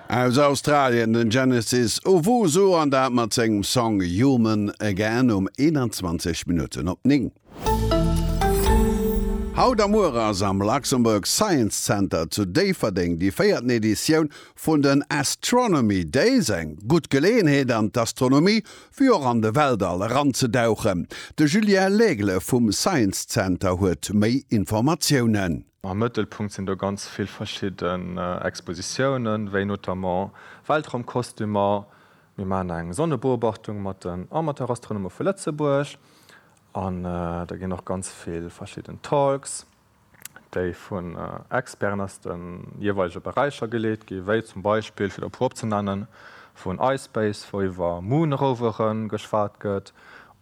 Aus Australien den Genesis Owusu an dat mat sengem Song Human Again um 21 Minutten op 9. Haut a muer ass am Luxembourg Science Center zu Déifferdeng déi véierten Editioun vun den Astronomy Days. Eng gutt Geleeënheet an d'Astronomie wéi och an de Weltall eranzedauchen. De Julien Laigle vum Science Center huet méi Informatiounen. Am Mëttelpunkt sinn do ganz vill verschidden Expositiounen, wéi notamment Weltraumkostümer, mir maachen eng Sonnebeobachtung mat den Amateurastronome vu Lëtzebuerg an da ginn och ganz vill verschidden Talks, déi vun Experten aus de jeeweilege Beräicher geleet ginn, wéi zum Beispill, fir der e puer opzenennen, vun iSpace, wou iwwer Moon-Rovere geschwat gëtt,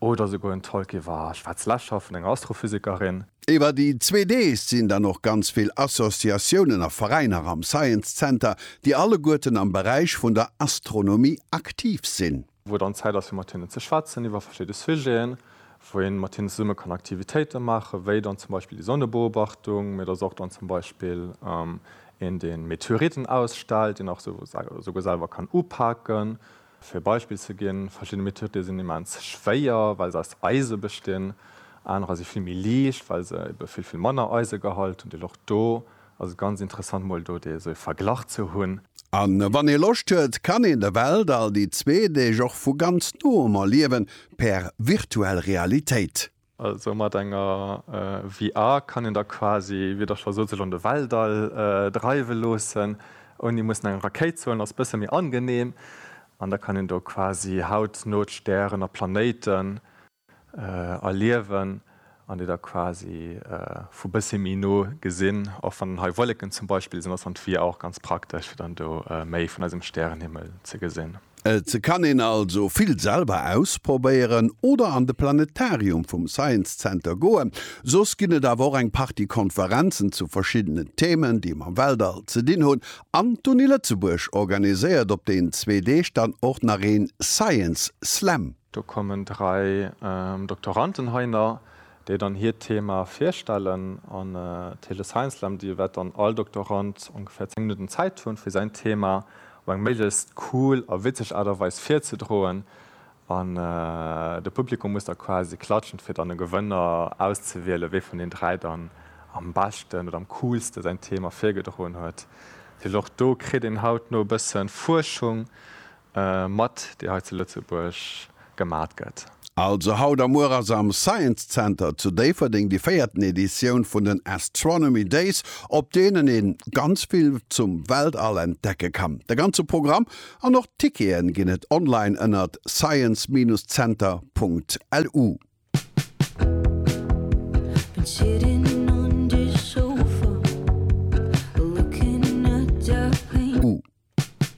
Oder souguer en Talk iwwer Schwarzlächer vun enger Astrophysikerin. Iwwer déi zwee Deeg sinn dann och ganz vill Associatiounen a Veräiner am Science Center, déi alleguerten am Beräich vun der Astronomie aktiv sinn. Wou dann Zäit ass fir mat hinnen ze schwätzen iwwer verschidde Sujeten, wou een mat hinnen zesumme kann Aktivitéiten maachen, wéi dann zum Beispill déi Sonnebeobachtung, mee et ass och dann zum Beispill een deen Meteoriten ausstellt, deen och souguer selwer kann upaken, Fir e Beispill ze ginn, Verschidde Methoden sinn immens schwéier, well se aus Eise bestinn. Anerer si vill méi liicht, well se ebe vill, vill manner Eisegehalt hunn. Deel och do ass et ganz interessant, mol do dee esou ee Verglach ze hunn. A wann ee Loscht huet, kann een de Weltall déi zwee Deeg och vu ganz Noem erliewen, per virtuell Realitéit. Also mat enger VR kann een da quasi, wéi Der scho sot, sech an de Weltall dreiwe loossen, ouni mussen eng Rakéit ze huelen. Ass e bësse méi angeneem an da kann een do quasi hautno d'Stären a Planéiten erliewen an déi da quasi vu bësse méi no gesinn. Och wann dann hei Wolleken zum Beispill sinn, ass dann d'VR och ganz praktesch, fir dann do méi vun eisem Stärenhimmel ze gesinn. Et kann een also vill selwer ausprobéieren oder an de Planetarium vum Science Center goen. Soss ginn et awer och eng Partie Konferenzen zu verschiddenen Themen, déi mam Weltall ze dinn hunn. An d'Uni Lëtzebuerg organiséiert op deenen zwee Deeg dann och nach een Science Slam. Do kommen dräi Doktoranten hei nach déi dann hiert Thema virstellen an Téléscience-Slam, déi wat dann all Doktorand ongeféier 10 Minutten Zäit hunn, fir säin Thema op eng méiglechst cool a witzeg Aart a Weis virzedroen an de Publikum muss da quasi klatschen, fir dann e Gewënner auszewielen, wee vun den dräi dann am beschten oder am coolste säin Thema virgedroen huet. Well och do kritt een hautno e bësse Fuerschung Mat déi hei zu Lëtzebuerg gemat gëtt. Also haut a muer ass am Science Center zu Déifferdeng déi véierten Editioun vun den Astronomy Days, op deenen ee ganz vill zum Weltall entdecke kann. De ganze Programm an och d'Tickete ginn et online ënnert science-center.lu.